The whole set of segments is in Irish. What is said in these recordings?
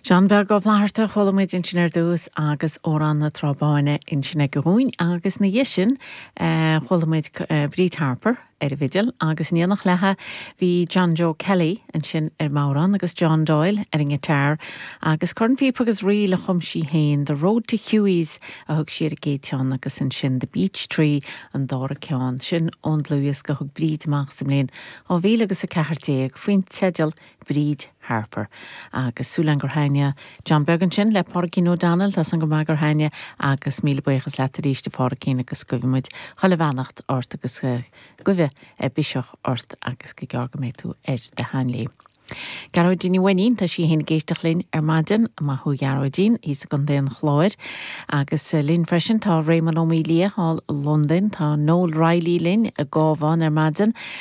John Beag Ó Flatharta, chuala muid ansin ar dtús, agus Amhrán na Trá Báine ansin aige dhúinn, agus ina dhiaidh sin, chuala muid Bríd Harper ar an bhfidil, agus in éineacht léithi, bhí John Joe Kelly ansin ar an mbodhrán, agus John Doyle ar an ngiotár, agus cornphíopa agus ríl a chum sí féin, The Road to Hughie's a thug sí ar an gcéad cheann, agus ansin The Beech Tree an dara ceann, sin ón dlúthdhiosca a thug Bríd amach sa mbliain 2000 agus 14, faoin teideal, Bríd Harper. Agus súil againn gur thaitnigh John Beag ansin le Pádraicín O'Donnell, tá a fhios againn go maith gur thaitnigh agus míle buíochas leat arís a Phádraicín agus guibheann muid chuile bheannacht ort agus guibhe biseach ort agus gur gearr go mbeidh tú ar do sheanléim. Gearóidín Ní Mhainnín, tá sí fhéin ag éisteacht linn ar maidin, maith thú a Ghearóidín, thíos i gContae an Chláir. Agus linn freisin tá Réamonn Ó Maoildhia thall i Londain, tá Noel Reilly linn i gCabhán ar maidin,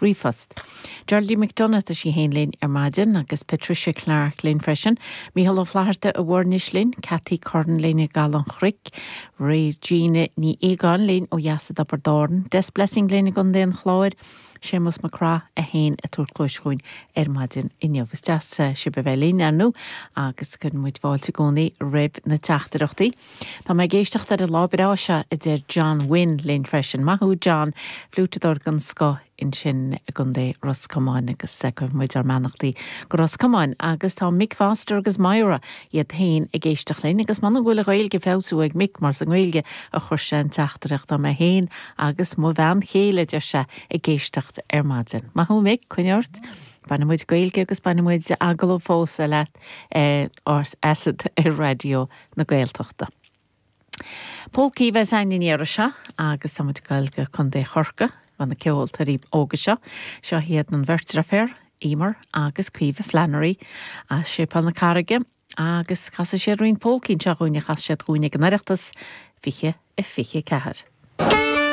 ríomhphost. Geraldine McDonagh, tá sí féin linn ar maidin agus Patricia Clarke linn freisin, Micheál Ó Flatharta i bhFoirnis linn, Cathy Curran linn i gCaladh an Chnoic, Regina Ní Aogáin linn ó dheas i dTiobraid Árann, Des Blessing linn i gContae an Chláir, Séamus Mac Craith é féin ag tabhairt cluais dhúinn ar maidin inniu. Is deas sibh a bheith linn, ar ndú, agus cuireann muid fáilte i gcónaí roimh na teachtaireachtaí. Tá mé ag éisteacht ar an lá breá seo, a deir John Wynne linn freisin. Maith thú, John, fliúiteadóir den scoth ansin i gContae Ros Comáin, agus cuireann muid ár mbeannachtaí go Ros Comáin. Agus tá Mick Foster agus Moyra iad féin ag éisteacht linn, agus m'anam go bhfuil a Ghaeilge ag feabhsú ag Mick, mar sa nGaeilge a chuir sé an teachtaireacht. Tá mé féin agus mo bhean chéile, a deir sé, ag éisteacht ar maidin. Maith thú, Mick, coinnigh ort. Bainfidh muid Gaeilge agus bainfidh muid agallamh fós leat ar asat ar Raidió na Gaeltachta. Pólcaí a bheas againn an iarraidh seo agus tá muid ag goil go Co. Chorcaí chun na ceoltóirí óga seo. Seo hiad an bheirt deirfiúr, Eimhear agus Caoimhe Flannery as Séipéal na Carraige agus casfaidh siad roinnt pólcaí anseo dhúinn a chas siad dhúinn ag an Oireachtas 2024.